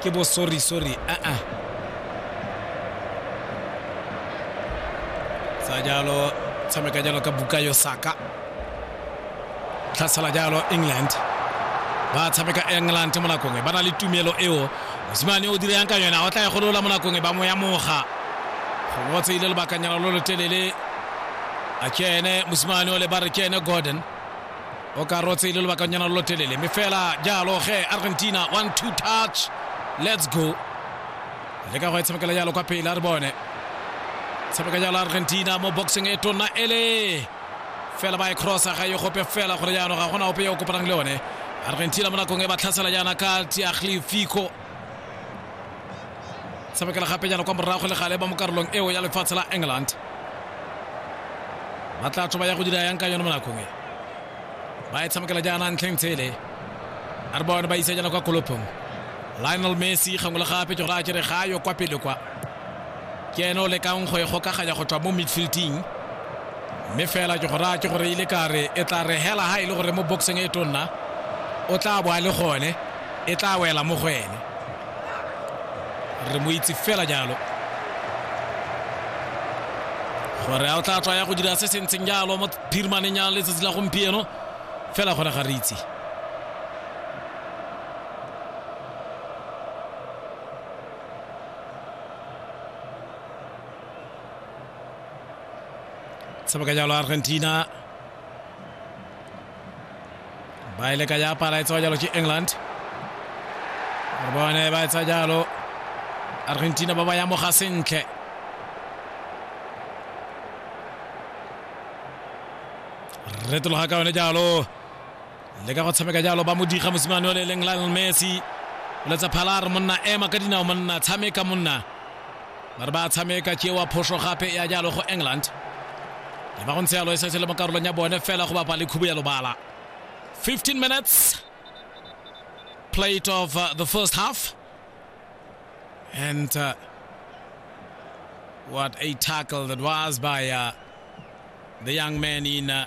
ke bo sorry sorry a a sa jalo tshameka jalo ka buka yo saka tlhasala jalo england ba tshameka england mo nakong e ba na le tumelo eo mosimane o direyang ka yona o tla e golola mo nakong e ba mo ya moga gongwe o tseile lobakanyana lo lo telele a kene mosimane o le ba re kene gordon o ka rotse le lobakanyana lo lo telele mme fela jalo ge argentina one two touch let's go le ka go e tshamekela jalo kwa pele a re bone tshameka jalo argentina mo boxing e tona ele fela ba e crossa ga e gope fela gore jaanong ga gona ope yo o kopanang le one argentina mo nakong e ba tlhasela jaana ka tiaglifico tshamekela gapenyana kwa morago le gale ba mo karolong eo ya lefatshe la england ba tla tswa ba ya go dira yang ka yone mo nakong e ba e tshamekela jaana ntlheng tshele a re bone ba isa jaana kwa kolopong lionel messi gangwe le gape ke gore a kere ga yo kwa pele kwa ke ene o lekang go e gokaganya go tswa mo midfielding mme fela ke gore a ke gore ile ka re e tla re hela ha e le gore mo boxing e tonna o tla bo a le gone e tla wela mo go ene re mo itse fela jalo gore a o tla tswa ya go dira se se ntseng jalo mo phirimaneng ya letsatsi la gompieno fela gore ga re itse sebaka jalo argentina ba e leka japa la etsewa jalo ke england re bone ba etsa jalo argentina ba ba yamoga sentle retologa ka yone jalo le ka go tshameka jalo ba modiga mosimane o le e leng lionel messi o letsa phalar monna ema ka dinao monna tshameka monna ba re ba tshameka ke wa phoso gape ya jalo go england le ba go ntse yalo e setse le mo karolong ya bone fela go bapa le khubo ya lobala 15 minutes plate of uh, the first half and uh, what a tackle that was by uh, the young man in uh,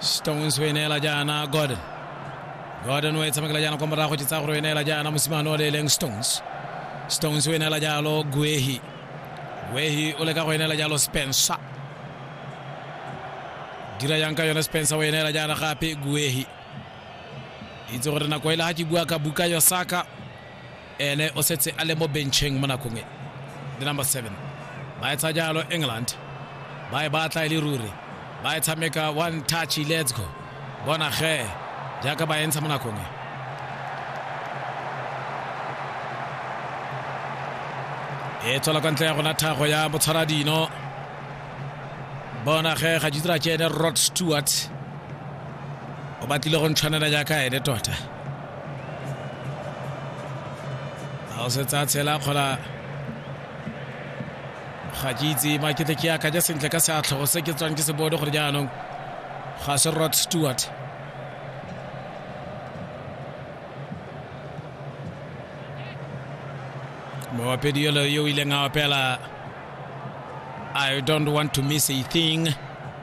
Stones o e neela jaana Gordon. Gordon o e tshamekela jaana kwa morago tse tsa gore o e neela jaana mosimane o le e leng Stones. Stones o e neela jalo Guehi. Guehi o leka go e neela jalo Spencer. Dira yang ka yone Spencer o e neela jaana gape Guehi. Itse gore nako e le ga ke bua ka buka Yosaka ene o setse a le mo bencheng mo nakong e the number seven ba etsa jalo england ba e batla e le ruri ba e tshameka one touch let's go bona ge jaaka ba entsha mo nakong e e tswela kwa ntle ya gona thago ya motshwaradino bona ge ga jitira ke ene rod stewart o batlile go ntshwanela jaaka ene tota a o setse a tshela kgola ga ke itse makete ke yaka ja sentle ka seatlhogo se ke tswang ke se bone gore jaanong ga se rod stewart moopedi yolo yo o ileng a opela i don't want to miss a thing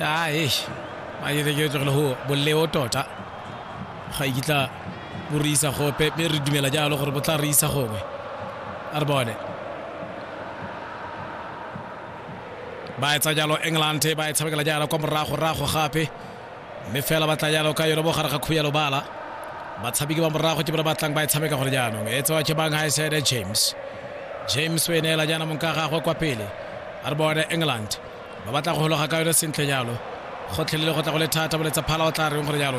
a eish a dire ke tlogele go boleo tota ga e kitla bo re isa gope mme re dumela jalo gore bo tla re isa gongwe a re bone ba etsa jalo england ba e tshamekela jalo kwa morago rago gape mme fela ba tla jalo ka yone mo gare ga khuya lobala batshameki ba morago ke bone ba tlang ba e tshameka gore jaanong e tsewa ke bang high side james james o e neela jaana mong ka gagwe kwa pele a re bone england ba batla go gologa ka yone sentle jalo gotlhelele go tla go le thata boletsa phala o tla reng gore jalo